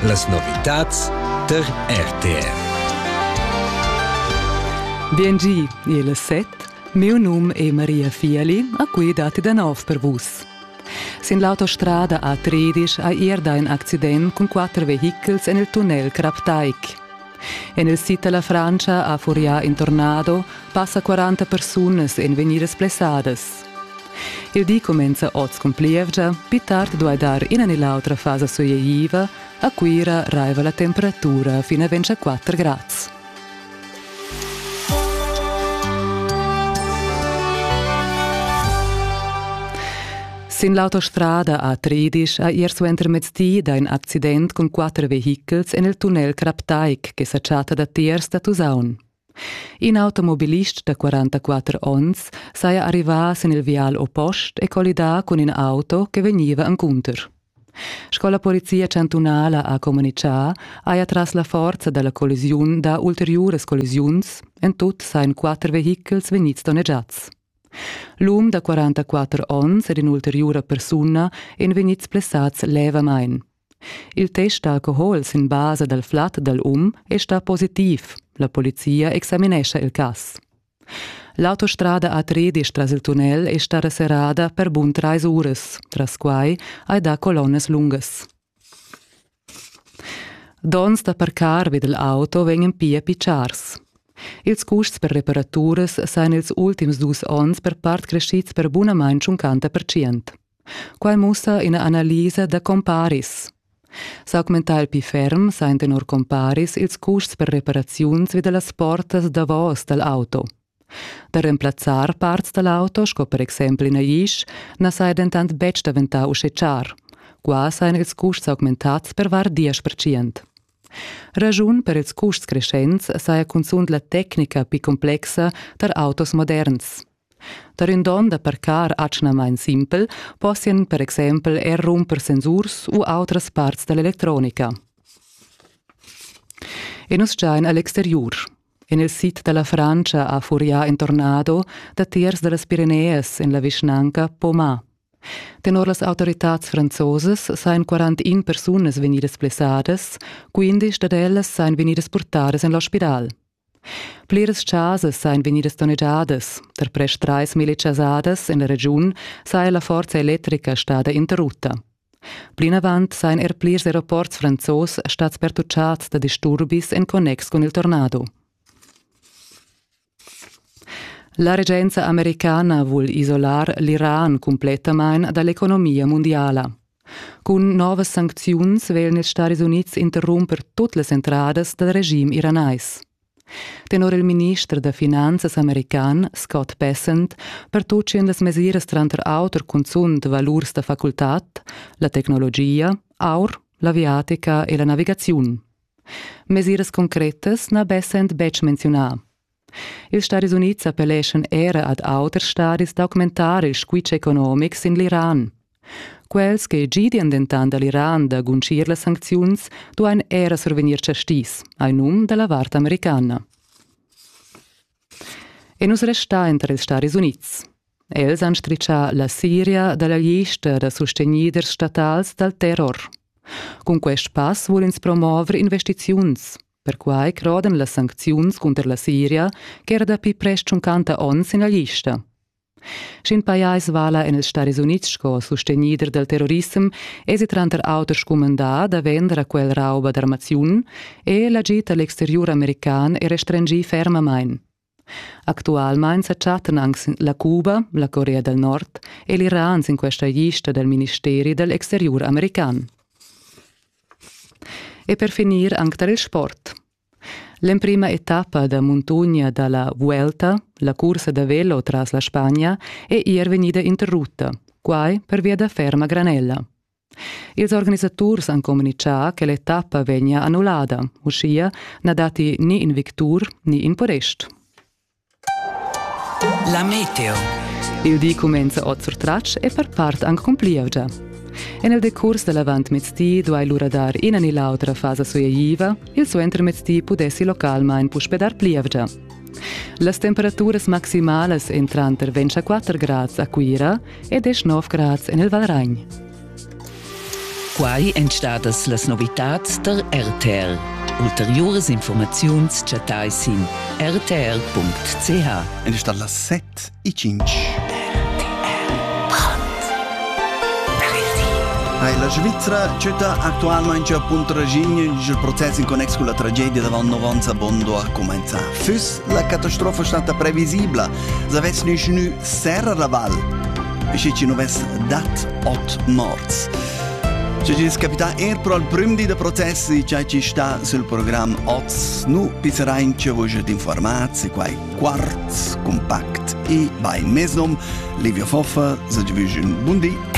Las novitads tar RTR. Biengi, il set. Mio num è Maria Fiali, a cui dati da nov per vus. Sin l'autostrada a Tredisch ha erda in accident cun quatter vehichels en il tunnel Kraptaik. En il sid della Francia a Furià in tornado passa 40 persunas en veniras blessadas. Il di cumenza oz cun plievgia, pli tard duai dar ina ni l'autra fasa sueieva. A Cuira raiva la temperatura fin a 24 grads. Sin l'autostrada a Tridisch ha ier suentermezdi dà in accident cun quatter vehichels en il tunnel Craptaik che sa chatta datiers da Tusaun. In automobilist da 44 onns saja arrivà sin il vial oppost e collidà cun in auto che vegniva encunter. Sco la polizia chantunala ha communitgà, haja tras la forza da la collisiun dà ulteriuras collisiuns, en tut sajan quatter vehichels vegnids donnegiads. L'um da 44 onns ed in'ulteriura persuna èn vegnids blessads levamain. Il test d'alcohol sin basa dal flat dal um è stà positiv. La polizia examinescha il cas. L'autostrada A13 tras il tunnel è stata serrada per bun trais uras. Tras quai hai dà colonnas lungas. Donns da parcar vid l'auto vegnan pia pitschars. Ils custs per reparaturas sajan ils ultims dus onns per part crescids per bunamain 50%. Quai mussa ina analisa da comparis. S'augmentar pli ferm sa han tenor comparis ils custs per reparaziuns vi da las portas davos dal auto. Da remplazzar parts dal auto, sco per exempel in agisch, na saja dentant betg daventà uschè char. Qua sajan ils custs augmentads per var 10%. Raschun per ils custs creschents saja cunzunt la tecnica pli complexa tar autos moderns. Tar ün don da parcar atgnamaing simpel possian per exaimpel eir rumper sensurs u autras parts da l'electronica. E nus giain a l'exteriur. En il sid da la Frantscha ha furià in tornado datiers da las Pirenees en la vischnanca Poma. Tenor las autoritads franzosas sajan 41 persunas vegnidas blessadas, quindisch dad ellas sajan vegnidas purtadas en l'ospital. Pliras chasas ein vegnidas donnegiadas. Per prest trais mille chasadas en la regiun saja la forza electrica stada interrutta. Plinavant sajan er plirs aeroports franzos stads pertucciads da disturbis en connex cun il tornado. La regenza americana vul isolar l'Iran cumplettamain dall'economia mundiala. Cun novas sancziuns veglan ils Stadis Unids interrumper tut las entradas dal regim iranais. Tenor il minister da finanzas american Scott Bessent pertutgian las mesiras tranter auter cunzunt valurs da facultad, la tecnologia, aur, l'aviatica e la navigaziun. Mesiras concretas n'ha Bessent betg menziunà. Ils Stadis Unids appelleschan era ad auters stadis d'augmentar il squitsch economic sin l'Iran. Quels che gidian dentant da l'Iran da guntgir las sancziuns duain era survegnir chastis, hai num da la vart americana. E nus resta entre ils Stadis Unids. Els han stritschà la Siria da la lista da sustegniders statals dal terror. Cun quest pass vul ins promover investiziuns, Perquai crodan las sancziuns cunter la Siria ch'era dapi prest tschuncanta onns ina lista. Sch'in pajais vala en ils Stadis Unids sco sustegnider dal terrorissem, èsi tranter auter scumandà da vender a quel rauba d'armaziun e l'agid a l'exteriur american è restringì fermamain. Actualmain sa chattan anc sin la Cuba, la Corea dal Nord e l'Iran sin questa lista dal ministeri dal exteriur american. E per finir anc tar il sport. L'emprima etappa da muntogna da la Vuelta, la cursa da velo tras la Spagna, è er vegnida interrutta, quai pervia da ferma granella. Ils organisaturs han communitgà che l'etappa vegnia annullada. Uschia na datti ni in victur ni in podest. La meteo. Il di cumenza oz sur tratsch e per part anc con plievgia. En il decurs da l'avantmezdi duai lura dar ina ni l'autra fasa sueitiva, il suentermezdi pudessi localmain puspe dar plievgia. Las temperaturas maximalas èn tranter 24 grads a Cuira e 19 grads en il Valragn. Quai èn stadas las novitads tar RTL. Ulteriuras informaziuns chattai sin rtr.ch. Ed è stata las 7 e 5. La Svizzera città attualmente appunto regine il processo in connex con la tragedia davant 9 anni a Bondo ha commenzato. Füss la catastrofa stata previsibile, se avesse nessuno Serra da Val, schi chi nu vess dat ot morts. Schi chi's capità eir pro al prüm di da process di cha chi sta sul program oz, nu pisserain che vus jet informats e quai quart, compact e by mesnum. Livio Foffa, sage vüsch un bun di